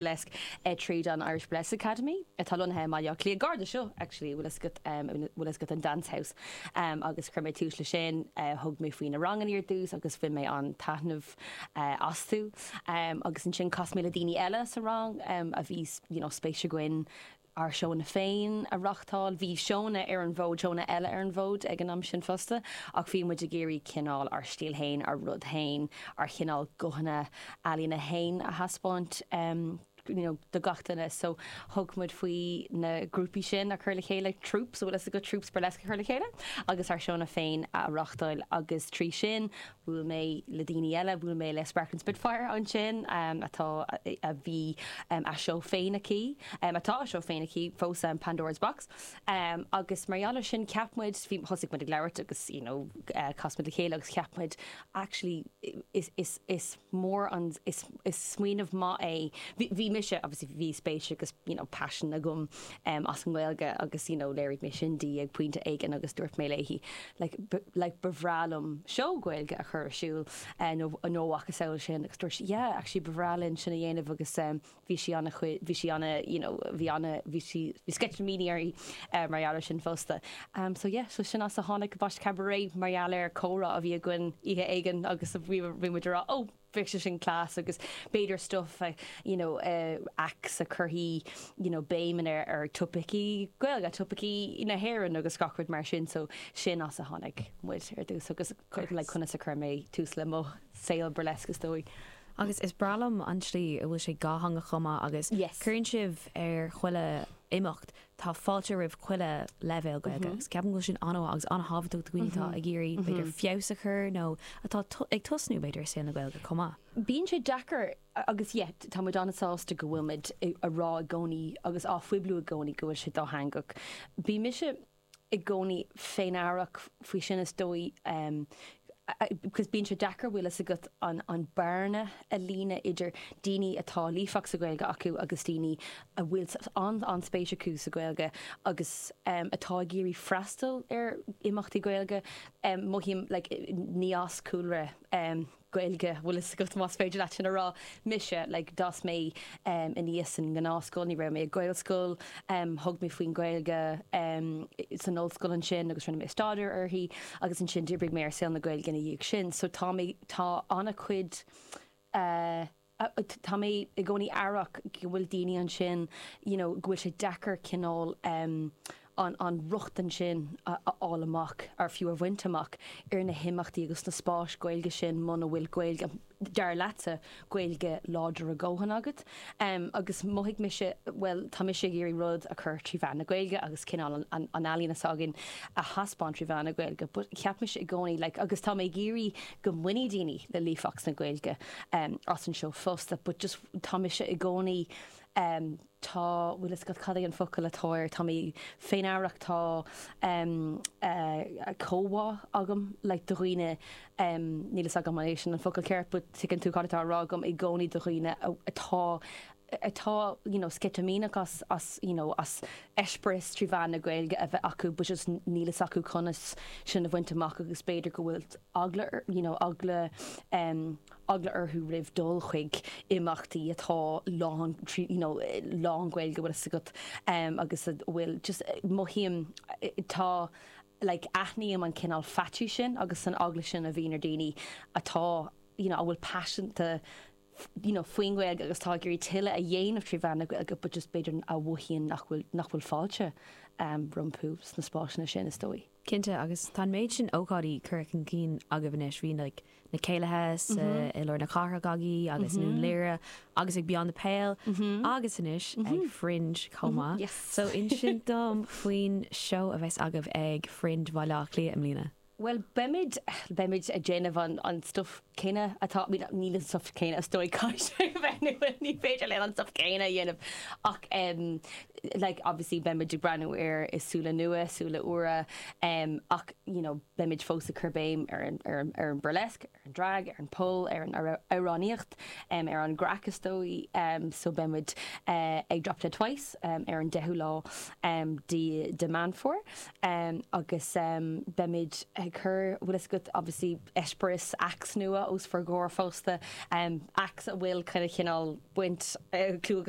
burlesque, eh, tríd an Irish Burlesque Academy, atá lonnaithe i mBaile Átha Cliath, gar do seo, actually, an bhfuil fhios agat an Dance House, em, agus chuir mé tús leis sin, eh, thug mé faoi na rangannaí ar dtús agus bhain mé an-taitneamh, eh, astu, em, agus ansin chas mé le daoine eile sa rang, em, a bhí, you know, spéis againn, ár seónna féin a reáchtáil. Bhí seónna ar an bhfód, seónna eile ar an bhfód ag an am sin fosta ach bhí muid ag iarraidh cineál ár stíl fhéin, ár rud fhéin, ár chineál guthanna ealaíne fhéin a thaispeáint you know do gach duine so thug muid faoi na grúpaí sin a chur le chéile, troupes, an bhfuil fhios agat, troupes burlesque a chur le chéile agus ár seónna féin a reáchtáil agus trí sin Bhuail mé le daoine eile, bhuail mé le Sparkling Spitfire ansin, atá, a bhí a seó féin aici, atá a seó féin aici fós, Pandora's Box, agus mar gheall ar sin cheap muid, thosaigh muid ag labhairt agus you know chas muid le chéile agus cheap muid actually is, is mór an, is smaoineamh maith é, bhí mise obviously bhí spéis agus you know paisean agam em as an nGaeilge agus you know léirigh mé sin ag pointe éigin agus dúirt mé léi like like ba bhreá liom seó Gaeilge a chur ar siúl eh nó nó a mhacasamhail sin agus dúirt sí yeah actually ba bhreá linn sin a dhéanamh agus em bhí sí ana chuid bhí sí ana you know bhí ana bhí sí bhí sceitimíní uirthi eh mar gheall ar sin fosta em so yeah so sin as a tháinig Baisc Cabaret mar gheall ar comhrá a bhí againn oíche éigin agus bhí bhí muid ag rá oh bheadh sé sin class agus b'fhéidir stuif you know acts a chuirfeadh you know béim in ar, ar topaicí Gaeilge, topaicí na hÉireann agus gach rud mar sin so sin as a tháinig muid ar dtús agus conas a chuir mé tús le mo saol burlesque is dóigh. Agus is breá liom an tslí a bhfuil sé dátheangach chomh maith agus cuireann sibh ar chuile imeacht tá fáilte roimh chuile leibhéal Gaeilge agus ceapaim go bhfuil sin an-mhaith agus an-thábhachtach do dhaoine atá ag iarraidh, b'fhéidir, feabhas a chur nó atá ag tosnú, b'fhéidir, i saol na Gaeilge chomh maith. Bíonn sé deacair agus, yeah, tá muid an-sásta go bhfuil muid ag rá i gcónaí agus á phoibliú i gcónaí go bhfuil sé dátheangach. Bhí mise. i gcónaí féin-aireach faoi sin is dóigh agus bíonn sé deacair bhfuil fhios agat an bearna a líonadh idir daoine atá líofa sa Ghaeilge acu agus daoine a bhfuil an-spéis acu sa Ghaeilge agus atá ag iarraidh freastal ar imeachtaí Gaeilge, mothaím, like, ní as cúlra. Gaeilge, bhfuil fhios agat, más féidir leat sin a rá. Mise, like, d'fhás mé aníos sa ngnáthscoil, ní raibh mé ag Gaelscoil, thug mé faoin Gaeilge san ollscoil ansin agus rinne mé staidéar uirthi agus ansin d'oibrigh mé i saol na Gaeilge ina dhiaidh sin so tá mé, tá an-chuid eh, tá mé i gcónaí aireach go bhfuil daoine ansin you know go bhfuil sé deacair cineál em an an rochtain sin a fháil amach or fiú a bhaint amach ar na himeachtaí agus na spáis Gaeilge sin muna bhfuil Gaeilge dar leatsa Gaeilge láidir go leor a dhóthain agat em agus mhothaigh mise bhuel tá mise ag iarraidh rud a chur trí mheán na Gaeilge agus cineál an an an ealaíona s'againn a thaispeáint trí mheán na Gaeilge but cheap mise i gcónaí like agus tá mé ag iarraidh go mbainfidh daoine le líofacht sa Ghaeilge as an seó fosta but just tá mise i gcónaí tá bhfuil fhios agat cad é an focal atá air tá mé féinamhrasach tá comhbhá agam like do dhaoine níl fhios agam an é sin an focal ceart but tuigeann tú cad atá á rá agam i gcónaí do dhaoine atá atá you know sceitimíneach as as you know as eispéireas trí mheán na Gaeilge a bheith acu but just níl fhios acu conas sin a bhaint amach agus b'fhéidir go bhfuil eagla you know eagla um eagla orthu roimh dul chuig imeachtaí atá lán trí you know lán Gaeilge bhfuil fhios agat um agus bhfuil just eh, mothaím eh, tá like aithním an cineál faitíos sin agus an eagla sin a bhíonn ar daoine atá you know a bhfuil paiseanta faoin nGaeilge agus atá ag iarraidh tuilleadh a dhéanamh trí mheán na Gaeilge but just b'fhéidir a mhothaíonn nach bhfuil nach bhfuil fáilte rompu sna spásanna sin is dóigh. Cinnte agus tá an méid sin ócáidí curtha chun cinn agaibh anois, bhí like na céilithe sa, i lár na cathrach agaibh agus i nDún Laoghaire agus ag Beyond the Pale agus anois ag Fringe chomh maith. So inis dom faoin seó a bheas agaibh ag Fringe Bhaile Átha Cliath i mbliana? Bhuel, beimid, beimid ag déanamh an, an stuif céanna atá, I mean, níl an stuif céanna is dóigh, caithfidh sé a bheith nua, ní féidir linn an stuif céanna a dhéanamh ach em like obviously beimid ag breathnú air le súile nua, súile úra em ach you know beimid fós ag cur béim ar an, ar an, ar an burlesque. ar an drag, ar an pole, ar an amhránaíocht, ar an gcraic is dóigh so beidh muid ag Drop Dead Twice ar an 10ú lá de Meán Fómhair agus beimid ag cur bhfuil fhios agat obviously eispéireas acts nua os bhur gcomhair fosta acts a bhfuil kind of cineál baint clú agus